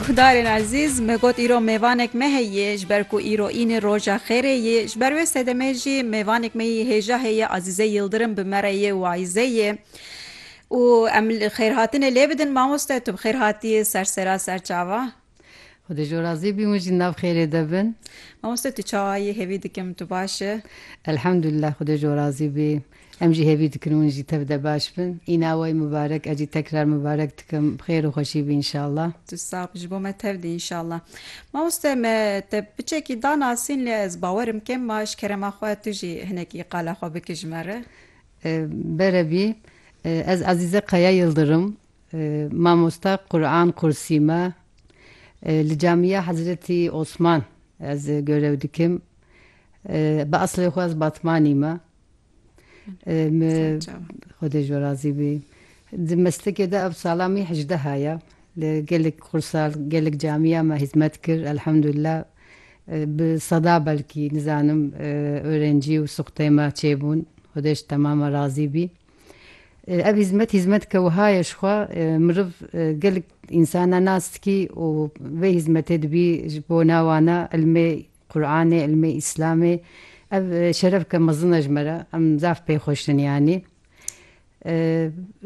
Guhdarên ezîz, me got îro mêvanek me heye, ji ber ku îro înê roja xêrê yê, ji ber wê sedemê jî mêvanek me yê hêja heye Azîze Yildirim bi me re yê û ayîze yê û em xêrhatinê lê bidin mamoste tu bi xêr hatî ser sera serçava. Xwedê ji we razî bî hûn jî nav xêrê de bin. Mamoste tu çawa yî hêvî dikim tu baş î. Elhamdulillah xwedê ji we razî bî em jî hêvî dikin hûn jî tev de baş bin îna we yî mibarek ez jî tekrar mibarek dikim bi xêr û xweşî bî înşallah. Tu sax bi ji bo me tev dî înşallah. Mamoste me te piçekî da nasîn lê ez bawerim kêm ma ji kerema xwe tu jî hinekî qala xwe bike ji me re. Bere bî ez Ezîze Kaya Yildirim Mamosta Quran Qursî me li Camîya Hezretî Osman ez görev dikim. Bi eslê xwe ez Batmanî me. Xwedê ji we razî bî. Di meslikê de ev sala min hejdeha ye. Li gelek qursa, gelek camîya me hizmet kir. Elhamdulillah bi seda belkî nizanim orencî û suxtê me çêbûn. Xwedê ji temama razî bî. Ev hîzmet hîzmeteke wiha ye ji xwe miriv gelek însanan nas dikî û vê hîzmetê dibî ji bo na wan e ilmê Quranê, ilmê Îslamê. Ev şerefeke mezin e ji me re. Em zaf pê xwe ştin yanî.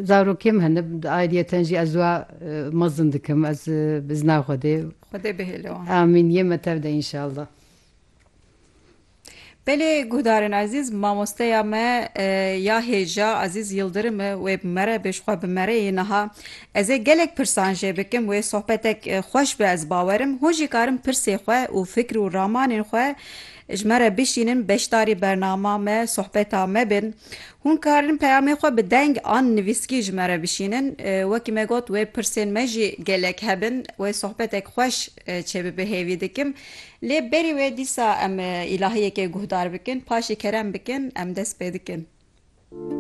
Zarokê min hene di ayriyeten jî ez wa mezin dikim. Ez bi izna Xwedê. Xwedê bihêle wan. Amîn. Yê me tev de înşallah. Belê guhdarên ezîz mamosteya me ya hêja Ezîz Yildirim e wê bi mere be ji xwe bi mere yê niha ez ê gelek pirsan jê bikim wê sohbetek xweş be ez bawerim hûn jî karin pirsê xwe û fikr û ramanên xwe ji me re bişînin beşdarî bernama me sohbeta me bin hûn karin peyamê xwe bi deng an nivîskî ji me re bişînin wekî me got wê pirsên me jî gelek hebin wê sohbetek xweş çêbibe hêvî dikim. Lê berî wê dîsa em îlahiyekê guhdar bikin, paşê kerem bikin, em dest pê dikin.